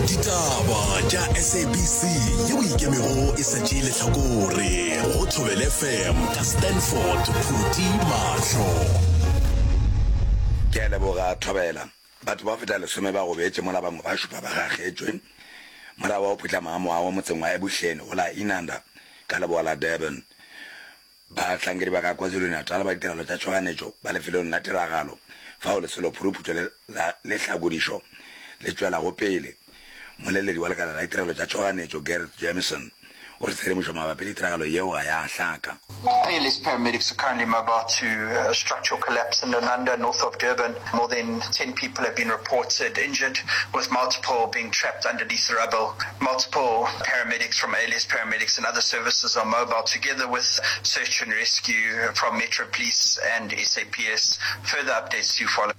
ditaba tša sabc yeo e ikemego e sa tšee lehlakore go thobel fm ka stanford phuti mahlo ke a leboga thobela batho ba feta lesome ba gobetše mola bangwe ba šupa ba gagetšwe morago wa go phutlama ga mowa wa motseng wa ebuhleni go la inanda ka leboa la durban Bahlankedi ba ka KwaZulu-Natal ba ditirelo tša tšhoganetšo ba lefelong la tiragalo fao lesolo phuruphuto le la lehlakodišo le tšwelago pele. Mmoleledi wa lekala la ditirelo tša tšhoganetšo Gareth Jamieson o re tshedimošo mabapi le tiragalo yeo ga ya hlaka. Air List paramedics are currently mobile to a structural collapse in Lunanda, north of Durban. More than ten people have been reported injured, with multiple being trapped underneath the rubble. Multiple paramedics from ALS Paramedics and other services are mobile, together with search and rescue from Metro Police and SAPS. Further updates to follow.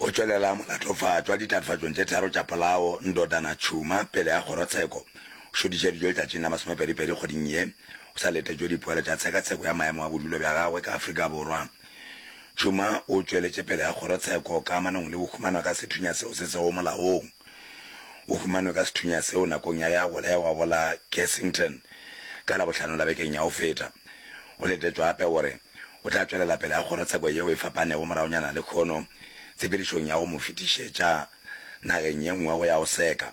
O tšwelela molatofatšwa ditatofatšong tše tharo tša polao Ndodana Tshuma pele ga kgorotsheko. O šodiše dijo letšatšing la masomepedipedi kgweding ye. O sa letetšwe dipoelo tša tshekatsheko ya maemo a bodulo bja gagwe ka Afrika Borwa. Tšhuma o tšweletše pele ga kgorotsheko ka amanong le bohumanwa ka sethunya seo se sego molaong. O humanwe ka sethunya seo nakong ya ya bolewa go la Kessington ka Labohlano la bekeng ya go feta. Go letetšwa gape gore o tla tšwelela pele ga kgorotsheko yeo e fapanego moragonyana lehono tshepedišong ya go mo fetišetša nageng ye nngwe go ya go seka.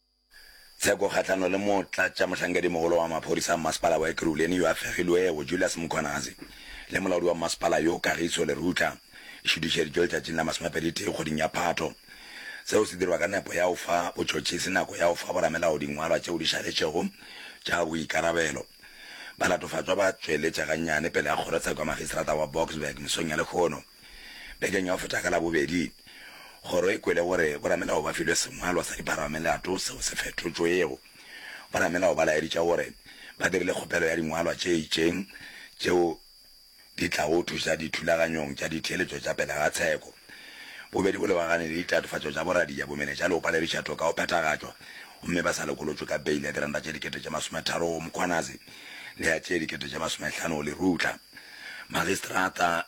Tsheko kgahlano le motlatšamohlankedi-mogolo wa maphodisa a mmasepala wa Ekurhuleni yo a fegilwego, Julius Mkhwanazi, le molaodi wa mmasepala yo, Kagiso Lerutla, e šutišeditšwe letšatšing la masomepedi-tee kgweding ya Phato. Seo se dirwa ka nepo ya go fa botšhotšhisi nako ya go fa boramelao dingwalwa tšeo di šaletšego tša boikarabelo. Balatofatšwa ba tšweletše gannyane pele ga kgorotsheko ya Magistrata wa Boksburg mesong ya lehono. Bekeng ya go feta ka Labobedi, Kgoro e kwele gore boramelao ba filwe sengwalwa sa dipharamelato seo se fetotšwego. Boramelao ba laeditše gore ba dirile kgopelo ya dingwalwa tše itšeng tšeo di tlago thuša dithulaganyong tša ditheeletšo tša pele ga tsheko. Bobedi bo lebagane le ditatofatšo tša boradia bomene tša leopa le lešato ka go phethagatšwa gomme ba sa lokolotšwe ka beile ya diranta tše dikete tše masometharo go Mkhwanazi le ya tše dikete tše masomehlano go Lerutla. Magistrata.